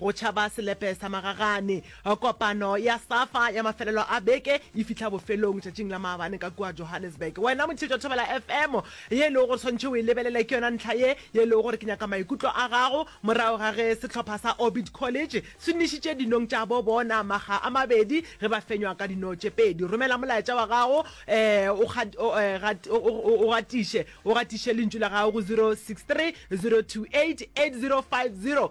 Go tšhaba selepe sa magagane. Kopano ya Safa ya mafelelo a beke e fihla bofelong tšatšing la maabane ka kua Johannesburg. Wena motheetši wa Thobela FM, ye e lego gore tshwanetše o e lebelele ke yona ntlha ye ye e lego gore ke nyaka maikutlo a gago morago ga ge sehlopha sa Orbit College se nwešitše dinong tša bo bona makga a mabedi ge ba fenywa ka dino tše pedi. Romela molaetša wa gago um o gatiše o gatiše lentšu la gago go 0630288050.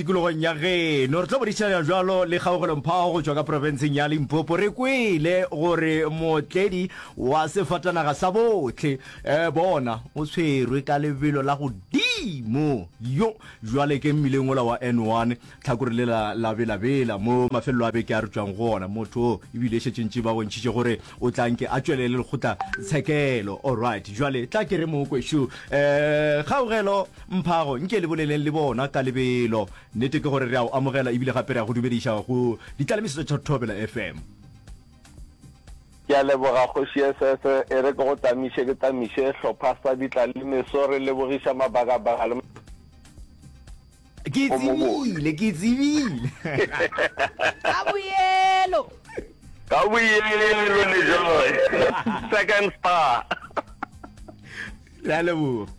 Tikologong ya geno re tlo bodišana bjalo le kgaogelomphao go tšwa ka profenseng ya Limpopo. Re kwele gore mootledi wa sefatanaga sa bohle eh, bona o tshwerwe ka lebelo la godimo yo jwale ke mmileng ola wa N1 tlhakore lela la belabela mo mafelelo a beke a re tšwang go ona. Motho o ebile e šetše ntši ba bontšhitše gore O tla nke a tšwelele lekgotla tshekelo. Alright, jwale tla ke re mokwe shu. Eh, kgaugelo, mphago, nke le boleleng le bona ka lebelo. Nnete ke gore re a o amogela ebile gape re a go dumediša go ditlalemisetso tša Thobela FM. Ke a leboga Kgoši SS. E re ke go tlamiše ke tlamiše sehlopha sa ditlalemeso. Re lebogiša mabakabaka le. ke tsebile ke tsebile ka boyelo ka boyelo le joy second star re a leboga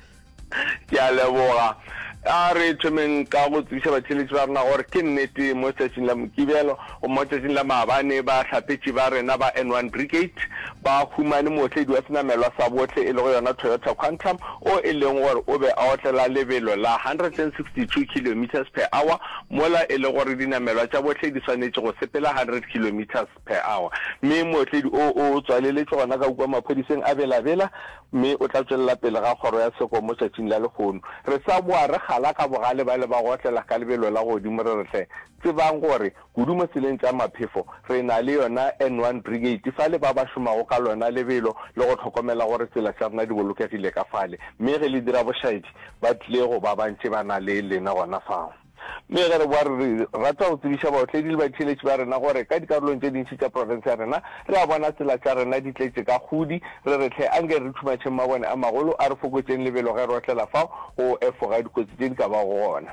ke a leboga a re thomeng ka go tsebiša batheletši ba rena gore ke nnete mo tšatšing la mokibelo Go motšatšing la maabane, bahlapetši ba rena ba N one Brigade ba humane mootledi wa senamelwa sa bohle e lego yona Toyota Quantum o e leng gore o be a otlela lebelo la 162 kilometres per hour mola e le gore dinamelwa tša bohle di swanetše go sepela 100 kilometres per hour mme mootledi o o tswaleletšwe gona ka kua maphodiseng a Bela-Bela mme o tla tšwelela pele ga kgoro ya seko motšatšing la lehono. Re sa boa re kgala ka bogale ba le ba go otlela ka lebelo la godimo re re hle Tsebang gore kudu mo tseleng tša maphefo re na le yona N one Brigade fale ba ba šomago ka lona lebelo le go hlokomela gore tsela tša rena di bolokegile ka fale mme ge le dira bošaedi ba tlile go ba bantši ba na le lena gona fao. Mme ge re boa re rata go tsebiša baotledi le batšheletši ba rena gore ka dikarolong tše dintši tša profense ya rena re a bona tsela tša rena di tletše ka kgudi, re re tlhe anke re thumatšheng mabone a magolo a re fokotšeng lebelo ge re otlela fao go efoga dikotsi tše di ka bago gona.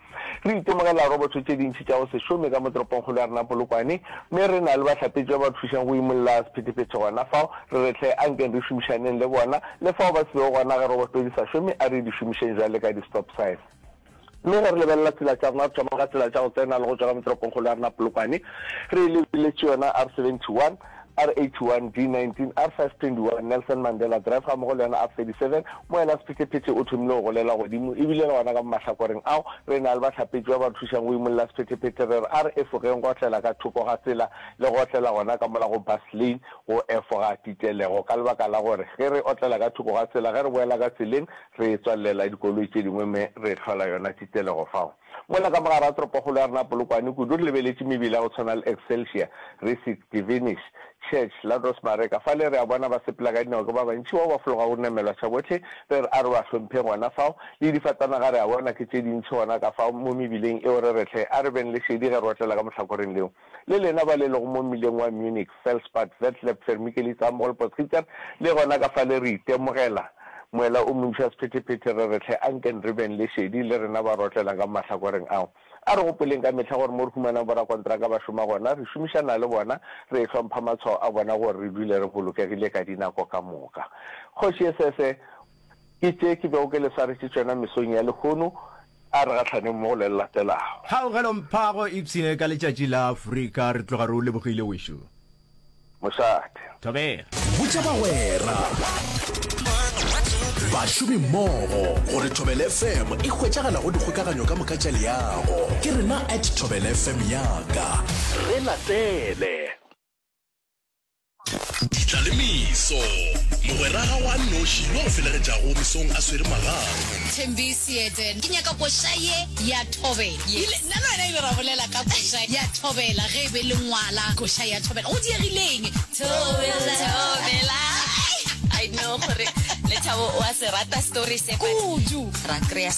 Re itemogela roboto tše dintši tša go se šome ka mo toropongkgolo ya rena Polokwane, mme re na le bahlapetši ba ba thušang go imolla sephethephethe gona fao. Re re hle ankeng re šomišaneng le bona, le fao ba se bego gona ge roboto di sa šome, a re di šomišeng bjale ka di-stop sign. Mme ge re lebelela tsela tša rona, re thoma ka tsela tša go tsena le go tšwa ka mo toropongkgolo ya rena Polokwane, re lebeletše yona R71, RH1, D19, R521, Nelson Mandela Drive gammogo le yona R37, mo yena Sephetephete o thomile go golela godimo, e bile le gona ka mo mahlakoreng ao re e na le bahlapetši ba ba re thušang go imolla Sephetephete, re re a re efogeng go otlela ka thoko ga tsela le go otlela gona ka mola go bus lane go efoga titelego ka lebaka la gore ge re otlela ka thoko ga tsela ge re boela ka tseleng re tswalelela dikoloi tše dingwe me re hlola yona titelego fao. Mola ka mogara toropokgolo ya rena Polokwane kudu re lebeletše mebila ya go tshwana le Excelsior, Risic, Divinish, Church, la Rosemareka fale re a bona ba sepela ka dinao ke ba bantši bao ba fologago rena melwatšha bohle re re a re ba hlompheng gona fao le difatanaga re a bona ke tše dintši gona ka fao mo mebileng eo re re hle a re beng le šedi ge re otlela ka mohlakoreng leo Le lena ba le lego mo mmileng wa Munich, Felspad, Vetlab, Vermikelitz, Amroll, Potsgieter, le gona ka fale re itemogela moela o montši wa sephetephete, re re tlhe anken re beng le šedi, le rena ba re otlelang ka mo mahlakoreng ao. A re gopoleng ka mehla gore mo re humanang borakontraka ba šoma gona, re šomišana le bona, re ehlompha matshwao a bona gore re dule re bolokegile ka dinako ka moka. Kgoši Esese, Ke tše ke bego ke le swaretše tšona mesong ya lehono, a re gahlane mmogo le le latelago. Kgaugelo Mphago Ipshinne ka letšatši la Afrika, re tloga re o lebogile wešu. Mošate. Thobela. Botša bagwera, bašomimmogo gore Thobela FM e hwetšagala go dikgokaganyo ka moka tša leago. Ke rena at Thobela FM yaka. Re latele. Ditla le meso. Mogwera ga wa noši yo a felegetšago mesong a swere magato. Thembi Seete, Ke nyaka koša ye ya thobela. Yes. Ile, nna le wena ile ra bolela ka koša ya thobela ge e be le ngwala koša ya thobela. Go diegileng? Thobela, thobela. I know gore Lethabo o a se rata story se. Kudu. Ra kry-a